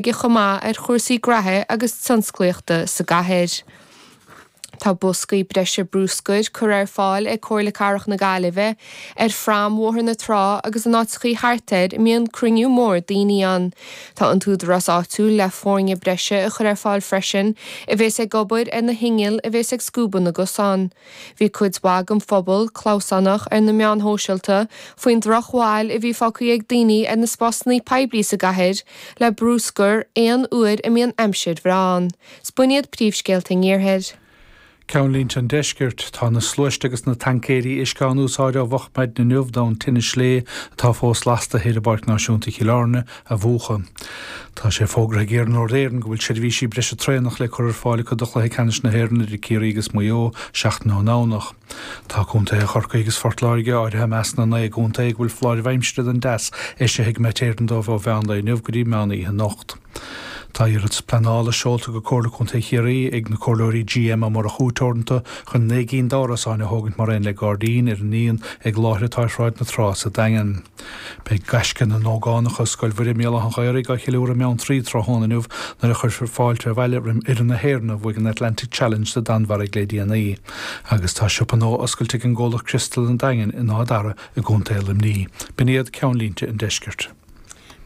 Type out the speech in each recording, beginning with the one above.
aige chomh maith ar chúrsaí gnaithe agus tionsclaíochta sa gcathair. Tá boscaí breise brúscair curtha ar fáil ag Comhairle Cathrach na Gaillimhe ar Phrom Bhóthar na Trá agus in áiteachaí thart air a mbíonn cruinniú mór daoine ann. Tá an t-údarás áitiúil le foirne breise a chur ar fáil freisin a bheas ag obair ar na hinnill a bheas ag scuabadh na gcosán. Bhí cuid mhaith den phobal clamhsánach ar na meáin shóisialta faoin drochbhail a bhí fágtha ag daoine ar na spásanna poiblí sa gcathair le brúscar aon uair a mbíonn aimsir bhreá ann. Is b'in iad príomhscéalta an iarthair. Ceannlínte an Deiscirt, Tá na sluaistí agus na taincéirí uisce á n-úsáid ó mhoch maidin inniu d'fhonn tine sléibhe atá fós lasta thoir i bPáirc Náisiúnta Chill Airne, a mhúchadh. Tá sé fógartha ag Iarnród Éireann go bhfuil seirbhísí breise traenach le cur ar fáil acu do Chluiche Ceannais na hÉireann idir Ciarraí agus Maigh Eo seachtain ón nDomhnach. Tá contaethe Chorcaí agus Phort Láirge áirithe i measc na naoi gcontae go bhfuil foláirimh aimsire don dteas eisithe ag Met Éireann dóibh ó mheán lae inniu go dtí meán oíche anocht. Tá iarratas pleanála seolta go Comhairle Contae Chiarraí ag na comhairleoirí GM Ó Murchú Teoranta chun naoi gceann d'árasáin a thógaint mar aon le gairdín ar an ndíon ag láthair atá ar Shráid na Trá sa Daingean. Beidh gaisce na n-ógánacha ó Scoil Mhuire i mBéal Átha an Ghaorthaidh á cheiliúradh i mBeanntraí tráthnóna inniu nuair a chuirfear fáilte abhaile roimh fhoireann na hÉireann a bhuaigh an Atlantic Challenge sa Danmhairg le déanaí agus tá siopa nua oscailte ag an gcomhlacht Criostal an Daingin in Áth Dara i gContae Luimnigh. B'in iad ceannlínte an Deiscirt.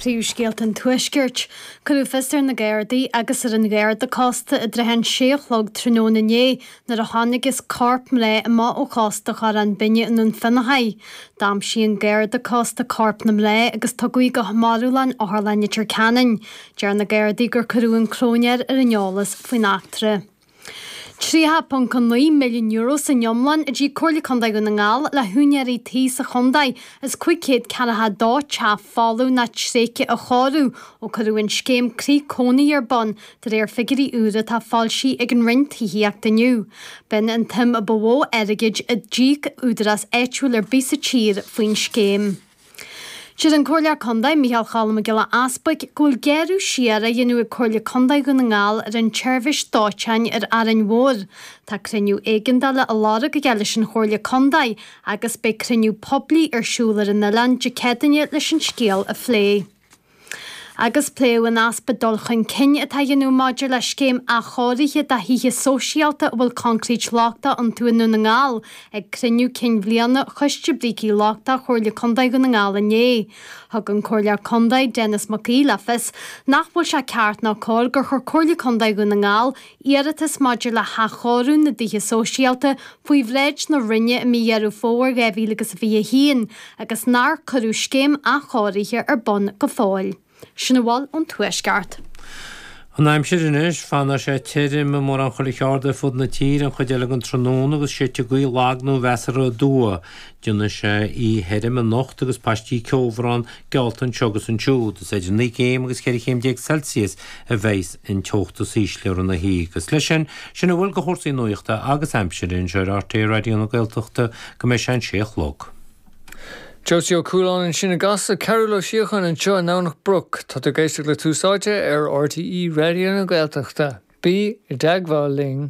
Príomhscéalta an Tuaiscirt. Cuireadh fios ar na Gardaí agus ar an Gharda Cósta i dtrátha an sé a chlog tráthnóna inné Nuair a thángthas ar chorp mná amach ó chósta Chorrán Binne i nDún Fionnachaidh. D'aimsigh an Garda Cósta corp na mná agus tugadh í go marbhlann Otharlann Leitir Ceanainn. Deir na Gardaí gur cuireadh an cróinéir ar an eolas faoin eachtra. €30.9 million san iomlán a d'íoc Comhairle Contae Dhún na nGall le h-úinéirí tí sa chontae as 500 ceann acu le teach folamh nó tréigthe a chóiriú ó cuireadh an scéim Croí Cónaithe ar bun De réir figiúirí úra atá foilsithe ag an Roinn Tithíochta inniu, b'in an tsuim a ba mhó airgid a d'íoc údarás áitiúil ar bith sa tír faoin scéim. Deir an Comhairleoir Contae, Micheál Choilm Mac Giolla Easbuig, go bhfuil gearradh siar á dhéanamh ag Comhairle Contae Dhún na nGall ar an tseirbhís dóiteáin ar Árainn Mhór. Tá cruinniú éigeandála á lorg aige leis an Chomhairle Contae agus beidh cruinniú poiblí ar siúl ar an oileán Dé Céadaoine leis an scéal a phlé. agus pléadh an easpa dul chun cinn atá á dhéanamh maidir le scéim athchóirithe do thithe sóisialta a bhfuil coincréit lochtach iontu i nDún na nGall ag cruinniú cinn bhliana Choiste Brící Lochtacha Chomhairle Contae Dhún na nGall inné. Thug an Comhairleoir Contae, Denis Mac Aoidh le fios nach bhfuil sé ceart ná cóir gur chuir Comhairle Contae Dhún na nGall Iarratas maidir le hathchóiriú na dtithe sóisialta faoi bhráid na Roinne i mí Dheireadh Fómhair 2021 agus nár cuireadh scéim athchóirithe ar bun go fóill. Sin a bhfuil ón Tuaisceart. An aimsir anois, Fanfaidh sé tirim i mórán chuile cheard ar fud na tíre an chuid eile den tráthnóna agus séidfidh gaoth lag nó mheasartha aduaidh. Déanfaidh sé oíche thirim anocht agus paistí ceobhráin, Geallta dó anseo agus ansiúd, agus idir naoi gcéim agus cheithre chéim déag Celsius a bheas an teocht is ísle i rith na hoíche agus leis sin, sin a bhfuil de chúrsaí nuachta agus aimsire anseo ar RTÉ Raidió na Gaeltachta go mbeidh sé an sé a chlog. Joe Steve Ó Cualáin ansin i gCasla, Cearúl Ó Síocháin anseo i nDomhnach Broc. Tá tú ag éisteacht le Tús Áite ar RTÉ Raidió na Gaeltachta. Bí i dteagmháil linn.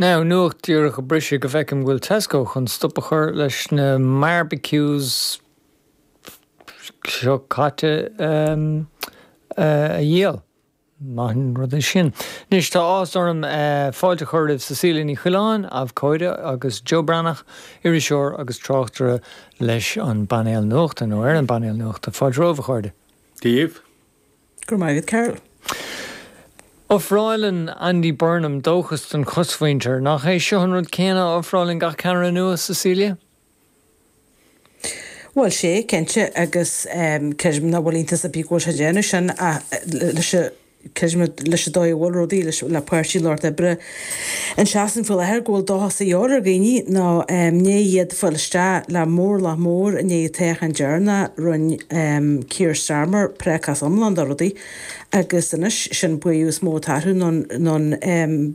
Now, nuacht díreach a briseadh go bhfeicim go bhfuil Tesco chun stop a chur leis na mbarbecues seo caite a dhíol. Maith an rud é sin. Anois, tá áthas orm fáilte a chur roimh Cecilia Ní Choileáin, abhcóide, agus Joe Breathnach, iriseoir agus tráchtaire, leis an bpainéal nuachta, nó ar an bpainéal nuachta. Fáilte romhaibh, a chairde. Dia daoibh. Go raibh maith agat, a Chearúil. Ofráileann Andy Burnham dóchas don chosmhuintir. Nach é seo an rud céanna a ofráileann gach ceannaire nua, Cecilia? Bhuel, sea, cinnte, agus creidim nach bhfuil iontas ar bith go bhfuil sé ag déanamh sin, ach leis an dóigh a bhfuil rudaí, le Páirtí an Lucht Oibre, Sa Sasana faoi láthair go bhfuil dóchas de dhíobháil ar dhaoine nó i ndiaidh iad fáil isteach le móramh mór i ndiaidh an toghcháin dheireanaigh rinne Keir Starmer prácás iomlán de rudaí agus anois sin an buaireamh is mó atá orthu nó an